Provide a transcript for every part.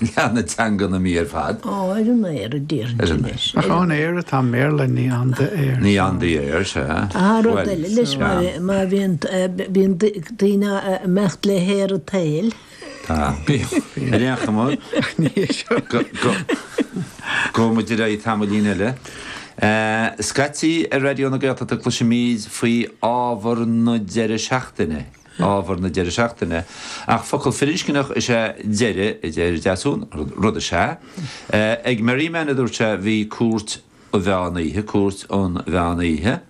Leagan, teanga na mná ar fad. Ó, ar an aer a déarfainn sin leis. Ach ón aer atá an mBéarla, ní in the air. Ní in the air, sea. Ah, rud eile leis, má bhíonn daoine a imeacht le haer an tsaoil. Tá, bíonn. Ar aon chuma, gabhfaidh muid ar aghaidh tamaillín eile. Scaití ar Raidió na Gaeltachta cloisimid faoi ábhar na deireadh seachtaine. ábhar na deireadh seachtaine, ach focal firinscneach is ea deireadh, a deir Deasún, rud is ea. Ag Merriman, a dúirt sé, bhí Cúirt an Mheán Oíche, Cúirt an Mheán Oíche.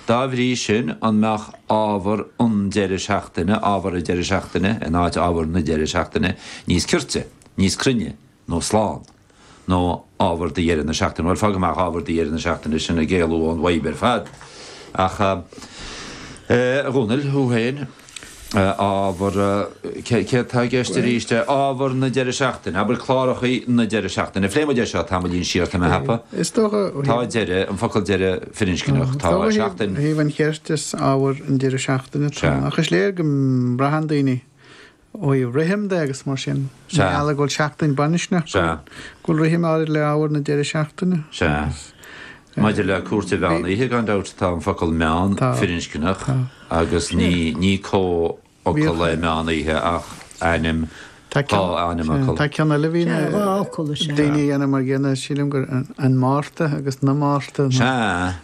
Dá bhrí sin, an mbeadh ábhar an deireadh seachtaine, ábhar an deireadh seachtaine in áit ábhar na deireadh seachtaine níos cirte, níos cruinne? nó slán. Nó ábhar do dheireadh na seachtaine. Bhuel, fág amach ábhar do dheireadh na seachtaine, sin ag éalú ón bhfadhb ar fad. Ach, a Dhónaill, thú féin, ábhar, céard tá i gceist arís, ábhar na deireadh seachtaine, abair cláracha na deireadh seachtaine. Phléigh muid é seo tamaillín siar, tá mé ag ceapadh. Is dócha. Tá deireadh, an focal deireadh firinscneach, tá seachtain. Ó thaobh an chirt is ábhar an deireadh seachtaine, tá. Ach is léir go mbraitheann daoine ó thaobh rithim de agus mar sin, i Sea. ngeall go bhfuil seachtain baininscneach, go Sea. bhfuil, go bhfuil rithim áirid le hábhar na deireadh seachtaine. Sea. Maidir le Cúirt an Mheán Oíche, gan dabht, tá an focal meán Tá. firinscneach Tá. agus ní, ní comhfhocal Bhíodh- é meán oíche ach ainm, Tá dhá ceann, ainm sea, fhocal. tá ceann eile a bhí na, Sea, dhá fhocal is ea. daoine a dhéanamh mar a chéanna, sílim gur an, an Márta agus na Márta. Sea.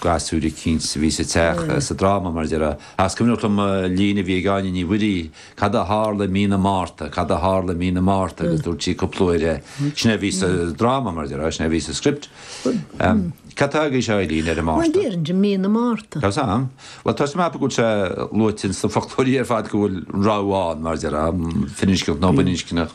gasúir eicínt a bhí sa teach, sa dráma, mar a déarfá. Ach is cuimhneach liom líne a bhí ag Áine Ní Mhuirí, Cad a tharla i mí na Márta, cad a tharla i mí na Márta, agus dúirt sí cúpla uair é. Sin é a bhí sa dráma, mar a déarfá, sin é a bhí sa script. Cad tá agaibhse a Eileen ar an Márta? Bhuel, déarfainn i mí na Márta. Tá's am. Bhuel, tá mé ag ceapadh go bhfuil sé luaite sna foclóirí ar fad go bhfuil an rogha ann, mar a déarfá, firinscneach nó baininscneach.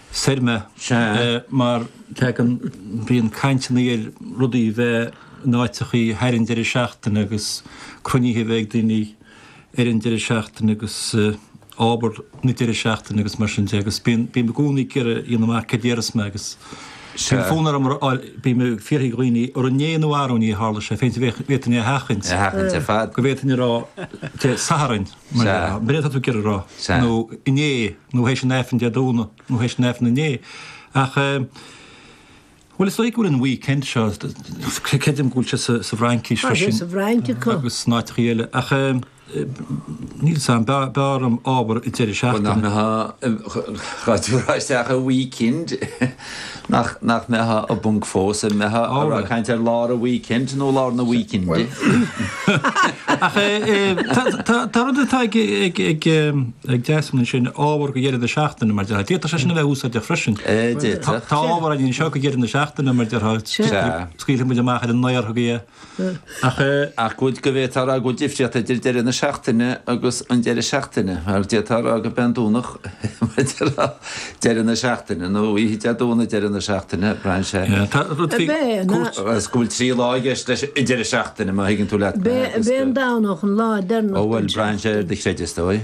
soir mé. Mar bíonn caint againn ar rudaí bheith in áiteachaí thar an deireadh seachtaine agus cruinnithe bheith ag daoine ar an deireadh seachtaine agus ábhar na deireadh seachtaine agus mar sin de agus bím bím i gcónaí ag iarraidh dhéanamh amach céard a déarfas mé agus bíonn fonn orm a fháil bím ag fiafraí de dhaoine an inné nó arú inné a tharla sé féin d'fhéadfadh d'fhéadfadh duine é a sheachaint a sheachaint ar fad go bhféadfadh duine a rá Dé Sathairn Sa. B'fhéidir tá tú ag iarraidh a rá. Sa. nó inné nó théis an Aifrinn Dé Domhnaigh nó théis an Aifrinn inné. Ach bhuel is dóigh go bhfuil an weekend seo, creidim go bhfuil sé sa sa bhFraincis freisin. Tá sé sa bhFrainc acu. agus san áiteachaí eile. Ach níl 's am, b'fhearr b'fhearr liom ábhar deireadh seachtaine. Bhuel nach mbeadh an Ghaillimh ar fad isteach i weekend. Nach, nach mbeadh a, a bponc fós, an mbeadh a, a raibh caint ar lár an weekend nó lár na weekende? Ach eh, eh, tá, tá, tá rud atá ag, ag, ag, eh, ag deisiú ansin ábhar go deireadh na seachtaine mar a déarfá. D'fhéadfadh sé sin a bheith úsáideach freisin. Eh, Tá, d'fhéadfadh. tá ábhar anseo go deireadh na seachtaine mar a déarfá. Sea. Scaoilfidh muid amach ar an naoi orthu go, Ach. Ach go bhféadfá a rá go bhfuil difríocht idir deireadh na seachtaine agus an deireadh seachtaine. Mar d'fhéadfá a rá go mbeidh an Domhnach mar deireadh na seachtaine, nó oíche Dé Domhnaigh deireadh na seachtaine, braitheann sé. Tá rud faoi cúirt. Agus go bhfuil trí lá i gceist leis an deireadh seachtaine, má thuigeann tú leat mé. Beidh an Domhnach an lá deireanach den seachtain. Ó bhuel, braitheann sé ar do chreideamh, is dóigh.